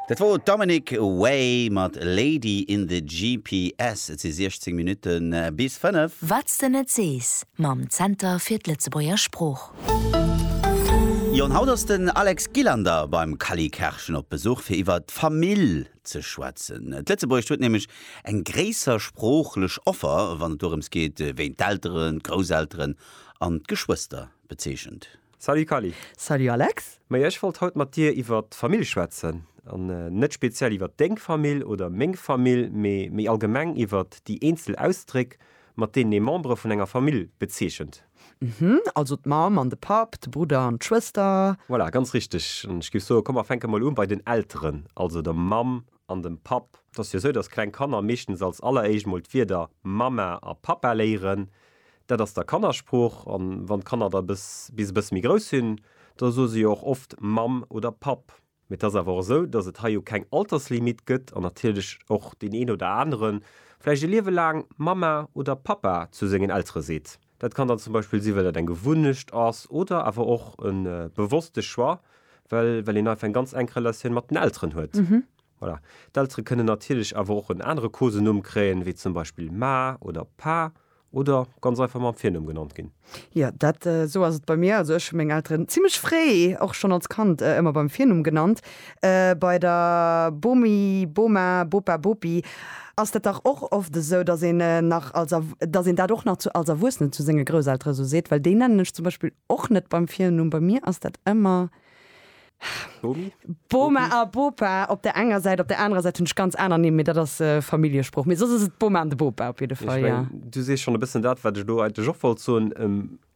Dat wor Dominic Way mat Lady in the GPS. Et si 16 Minutte bis 5. Wat s de net sees mam Zenter fir d'Lëtzebuerger Sprooch. Jo an haut ass den Alex Gillander beim Kally Kerschen op Besuch fir iwwer d'Famill ze schwätzen. D'Lëtzebuergescht huet nämlech eng gréisser sproochlech Offer wann et dorëms geet wéi een d'Elteren, d'Grousselteren an d'Geschwëster bezeechent. Salut Kali. Salut Alex. Maja ech wollt haut mat dir iwwert d'Famill schwätzen. An net speziell iwwert deng Famill oder meng Famill, mee méi allgemeng iwwert déi eenzel Ausdréck, mat deenen ee Membere vun enger Famill bezeechent. Mhm, also d'Mamm an de Papp, de Brudder an d'Schwëster. Voilà, ganz richteg. An ech géif soen, komm mer fänke mol u bei den Elteren, also der Mamm. an dem Papp. Et ass jo sou, datt kleng Kanner meeschtens als alleréischt mol d'Wierder Mama a Papa léieren. Dat ass da Kannersprooch. An wann d'Kanner da bis e bësse méi grouss sinn, da soe se jo och oft Mamm oder Papp. Mee et ass awer och esou, datt et hei jo keng Alterslimit gëtt an natierlech och deen een oder anere vläicht e Liewe laang Mama oder Papa zu sengen Eltere seet. Dat kann dann zum Beispill sinn, well dat eng Gewunnecht ass oder awer och e bewosste Choix, well well een einfach eng ganz enk Relatioun mat den Elteren huet. Voilà. D'Eltere kënnen natierlech awer och en anere Kosenumm kréien, wéi zum Beispill Ma oder Pa oder ganz einfach mam Virnumm genannt ginn. Jo, dat esou ass et bei mir. Also ech hu meng Elteren zimmlech fréi, och schonn als Kand, ëmmer beim Virnumm genannt. Bei der Bomi, Boma, Bopa, Bopi ass dat dach och oft esou, datt een nach als, datt een dat och nach zu als Erwuessenen zu senge Grousseltere esou seet, well déi nennen ech zum Beispill och net beim Virnumm. Bei mir ass dat ëmmer Bomi, Boma a Bopa op der enger Säit. Op der anerer Säit hunn ech ganz aner Nimm, mee dat ass Familljesprooch. Mee soss ass et d'Boma an de Bopa op jidde Fall, jo. Ech mengen, du sees schonn e bëssen dat, wat ech elo eigentlech och wollt soen.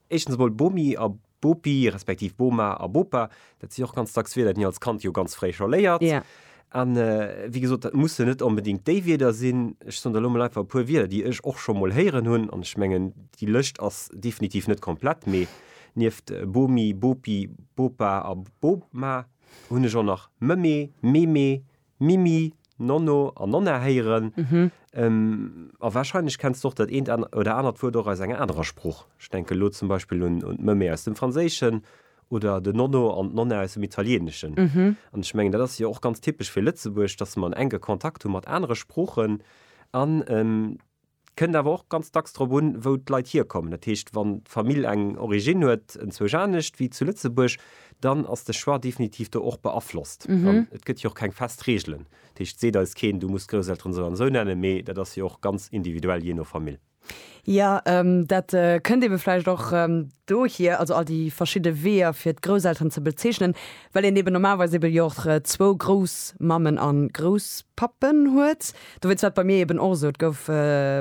Éischtens emol Bomi a Bopi, respektiv Boma a Bopa, dat si och ganz dacks Wierder, déi een als Kand jo ganz fréi scho léiert. An wéi gesot, dat mussen net onbedéngt déi Wierder sinn. Ech soen der elo mol einfach e puer Wierder, déi ech och scho mol héieren hunn. An ech mengen, déi Lëscht ass definitiv net komplett, mee nieft Bomi, Bopi, Bopa a Boma hunn ech och nach Mëmme, Meme, Mimi, Nonno an Nonna héieren. A warscheinlech kenns de och dat eent oder anert Wuert och aus enger anerer Sprooch. Ech denken elo zum Beispill un d'Mëmme aus dem Franséischen oder den Nonno an d'Nonna aus dem Italieeneschen. An ech mengen, dat ass jo och ganz typesch fir Lëtzebuerg, dass mer en enke Kontakt hu mat anere Sproochen an. Et kënnt awer och ganz dacks drop un, wou d'Leit hierkommen. Dat heescht, wann d'Famill eng Originn huet, enzwousch anescht wéi zu Lëtzebuerg, dann ass de Choix definitiv do och beaflosst. An et gëtt jo och keng fest Reegelen. Dat heescht, et seet eis keen, du muss d'Grousselteren esou an esou nennen, mee dat ass jo och ganz individuell jee no Famill. Jo, dat kënnt eebe vläicht och dohier, also all déi verschidde Weeër, fir d'Grousselteren ze bezeechnen, well een eeben normalerweis eebe jo och zwou Groussmammen a Grousspappen huet. Dowéinst war et bei mir eben och esou, et gouf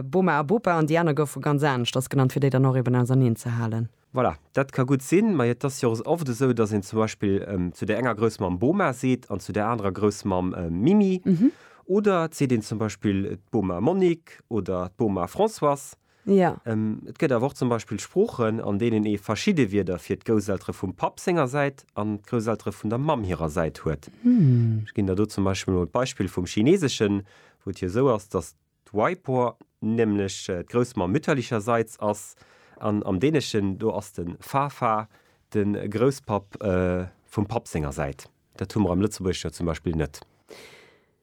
Boma a Bopa an déi aner goufe ganz anescht, dat ass genannt, fir déi dann och eben auserneen ze halen. Voilà, dat ka gutt sinn, mä et ass jo och oft esou, datt een zum Beispill zu där enger Groussmamm Boma seet an zu där anerer Groussmamm Mimi. Oder et seet een zum Beispill d'Boma Monique oder d'Boma Françoise. Jo. Et gëtt awer och zum Beispill Sproochen, an deenen ee verschidde Wierder fir d'Gousseltere vum Papp senger Säit an d'Gousseltere vun der Mamm hirer Säit huet. Ech ginn der do zum Beispill emol d'Beispill vum Chineeseschen, wou et jo esou ass, dass d'Waipo nämlech d'Groussmamm mütterlicherseits ass, an am Däneschen do ass de Farfar de Grousspapp vum Papp senger Säit. Dat hu mer am Lëtzebuergesch jo zum Beispill net.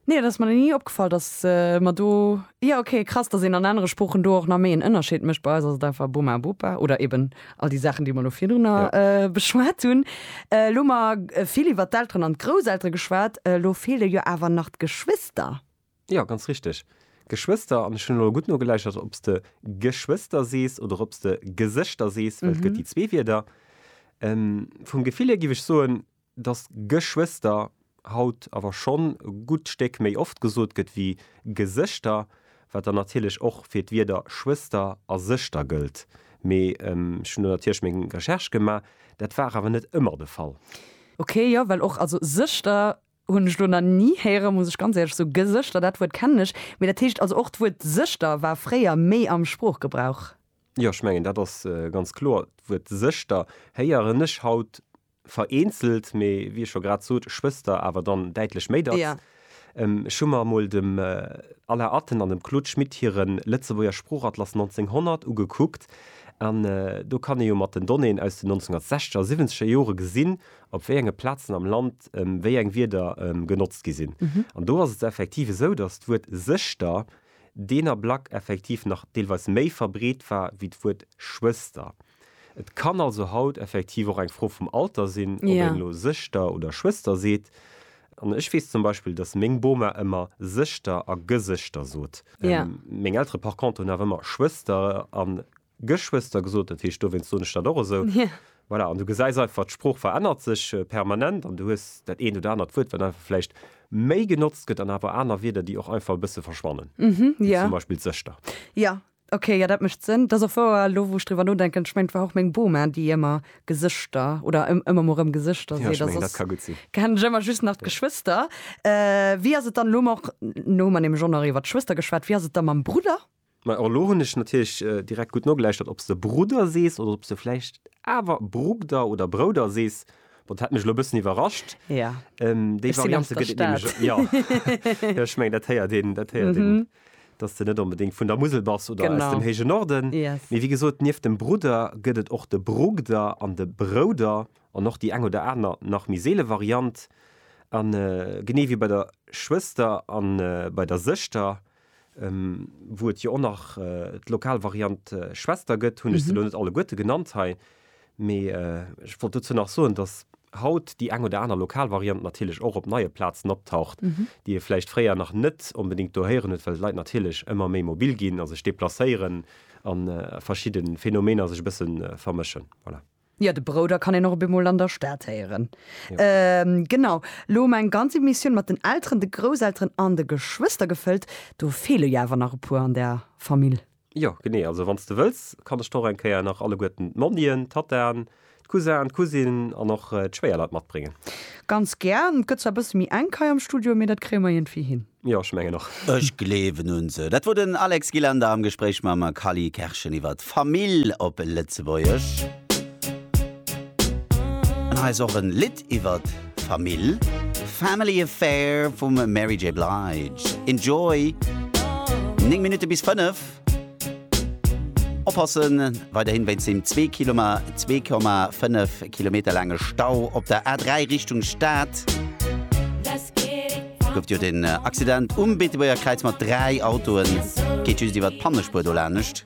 Nee, et ass mer nach ni opgefall, datt mer do, jo ok, krass, datt een an anere Sproochen do och nach méi en Ënnerscheed mécht. Bei eis ass et einfach Bummer a Bupa oder eben all déi Saachen, déi mer elo virdrunner beschwat hunn. Elo hu mer vill iwwert d'Elteren an d'Grousseltere geschwat, elo feele jo awer nach d'Geschwister. Jo, ganz richteg, Geschwister. An ech hunn elo gutt nogeläichert, ob s de Geschwister sees oder ob s de Gesëschter sees, well et gëtt déi zwee Wierder. Vum Gefill hier giff ech soen, Dass Geschwëster haut awer schonn e gutt Stéck méi oft gesot gëtt wéi Gesëschter, wat dann natierlech och fir d'Wierder Schwëster a Sëschter gëllt. Mee ech hunn do natierlech meng Recherche gemaach, dat war awer net ëmmer de Fall. Ok, jo, well och, also Sëschter hunn ech elo nach ni héieren, muss ech ganz éierlech soen. Gesëschter, dat Wuert kennen ech. Mee dat heescht also och d'Wuert Sëschter war fréier méi am Sproochgebrauch? Jo, ech mengen dat ass ganz kloer. D'Wuert Sëschter héieren ech haut Vereenzelt, mee wéi ech scho grad sot, Schwëster awer dann däitlech méi dacks. Jo. Ech hu mer emol dem Alain Atten an dem Claude Schmit hire Lëtzebuerger Sproochatlas 1900 ugekuckt. An do kann ee jo mat den Donnéeën aus den 1960 a 70 er Jore gesinn, op wéi enge Plazen am Land wéi eng Wierder genotzt gi sinn. An do ass et effektiv esou, datt d'Wuert Sëschter deen Ablack effektiv nach deelweis méi verbreet war wéi d'Wuert Schwëster. Et kann also haut effektiv och eng Fro vum Alter sinn, ob een elo Sëschter oder Schwëster seet. An ech weess zum Beispill, dass meng Boma ëmmer Sëschter a Gesëschter sot. Meng Eltere par contre hunn awer ëmmer Schwëster a Geschwëster gesot, dat heescht dowéinst soen ech dat och esou. Voilà, an du gesäis einfach, d'Sprooch verännert sech permanent an du hues dat eent oder anert Wuert, wat einfach vläicht méi genotzt gëtt an awer aner Wierder, déi och einfach e bësse verschwannen, wéi zum Beispill d'Sëschter. Jo, Ok, jo dat mécht Sënn. Et ass och wouer, elo wou ech driwwer nodenken, ech mengen et war och meng Boma déi ëmmer Gesëschter oder ëmmer mol rëm Gesëschter seet a soss kennen ech ëmmer just nach d'Geschwëster. Wéi ass et dann, elo hu mer nämlech och nach iwwer d'Schwëster geschwat, wéi ass et da mam Brudder? Majo, elo hunn ech natierlech direkt gutt nogeläuschtert ob s de Brudder sees oder ob s de vläicht awer Brugder oder Brouder sees. Bon, dat hätt mech elo e bëssen iwwerrascht. Déi Variante gëtt et nämlech och. Jo, ech mengen dat héiert een, dat héiert een dass de net onbedéngt vun der Musel bass oder aus dem héije Norden. Mee wéi gesot, nieft dem Brudder gëtt et och de Brugder an de Brouder an och déi eng oder aner nach méi seele Variant. A genee wéi bei der Schwëster a bei der Sëschter, wou et jo och nach d'lokal Variant Schwester gëtt, hunn ech se elo net alleguerte genannt hei, Mee ech wollt dozou nach soen, dass haut déi eng oder aner lokal Variant natierlech och op neie Plazen optaucht, déi ee vläicht fréier nach net onbedéngt do héieren huet, well d'Leit natierlech ëmmer méi mobil ginn a sech deplacéieren a verschidde Phänomener sech e bësse vermëschen. Voilà. Jo, de Brouder kann een och op eemol an der Stad héieren. Genau. Elo hu mer eng ganz Emissioun mat den Elteren, de Grousselteren an de Geschwëster gefëllt. Do feele jo awer nach e puer an der Famill. Jo, genee. Also wann s de wëlls, kann ech der och eng Kéier nach alleguerten d'Monnien, d'Tattaen, d'Cousin, d'Cousine an och d'Schwéierleit matbréngen. Ganz gär. Et gëtt zwar e bësse méi enk hei am Studio, mee dat kréie mer iergendwéi hin. Jo, ech mengen och. Ech gleewen un se. Dat wor den Alex Gilander am Gespréich mam Cally Kerschen iwwer d'Famill op Lëtzebuergesch. An hei ass och en Lidd. iwwer d'Famill, Family Affair vum Mary J. Blige. Enjoy! 9 Minutte bis 5. Oppassen, weiderhin wéinst dem 2 Kilome 2,5 Kilometer laange Stau op der A3 Richtung Stad gouf jo den Accident um Beetebuerger Kräiz mat 3 Autoen. Geet just iwwer d'Pannespuer do lanescht.